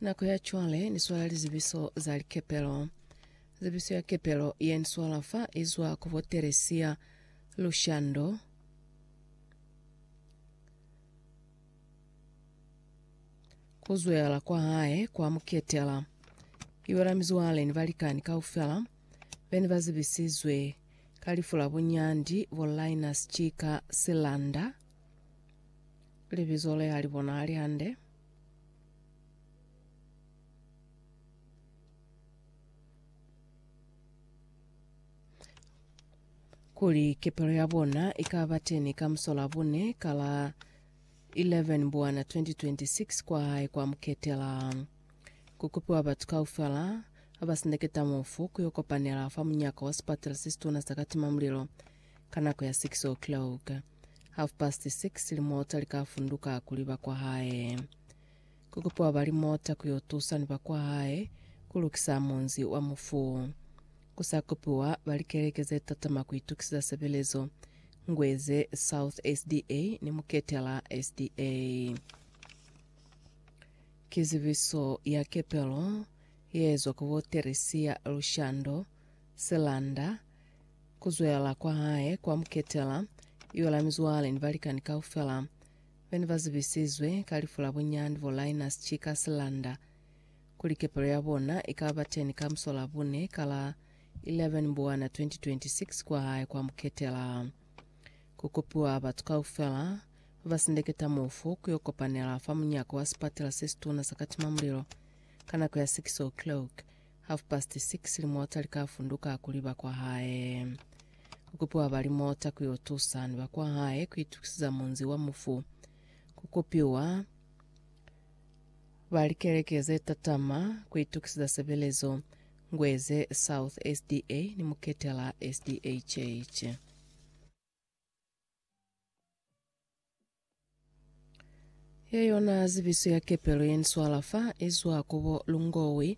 Nako ya cwale ni swala lizibiso za likepelo. Zibiso ya kepelo ye ni swala fa izwa ku bo Teresia Lushando. Kuzwela kwa hae kwa muketela. Iwe la mizwale ni balikani kaufela beni bazibisizwe ka lifu la bunyandi bo Linus Chika Silanda. Libizo le ha li bonahali hande. Kuli kepelo ya bona i ka ba teni ka Musolabune ka la 11 Mbwana 2026 kwa hae kwa Muketela. Ku kupiwa batu kaufela ba sindeketa mufu ku yo kopanela fa munyaka wa sipatela se situna sa Katimamulilo ka nako ya 6 o'clock. Half past six limota likafunduka kuli bakwahae. Kukupiwa ba limota kuyo tusa ni bakwahae kulukisa munzi wa mufu. Kusa kupiwa ba likeleke zetatama kuitukisisa sebelezo, Ngweze South SDA ni Muketela SDA. Kizibiso ya kepelo yeezwa ku bo Teresia Lushando, Selanda, Ku zwela kwa hae kwa mu ketela, yo la mizwale ni balikani kaufela be ne ba zibisizwe ka lifu la bunyani bo Linus Chika Silanda, kuli kepelo ya bona i ka ba teni ka musolabune ka la 11 Mbwana 2026 kwa hae kwa mu ketela. Ku kopiwa batu kaufela ba ba sindeketa mufu ku yo kopanela fa munyako wa sipatela se situna sa Katimamulilo ka nako ya 6:00 o'clock Half past six limota likafunduka kuli bakwahae. Kukupiwa ba limota kuyo tusa ni bakwahae kuitukisiza munzi wa mufu. Kukupiwa ba likeleke ze tatama kuitukisiza sebelezo, Ngweze South SDA ni Muketela SDA Church. Yeyona zibiso ya kepelo yeniswala fa izwa kubo Lungowi.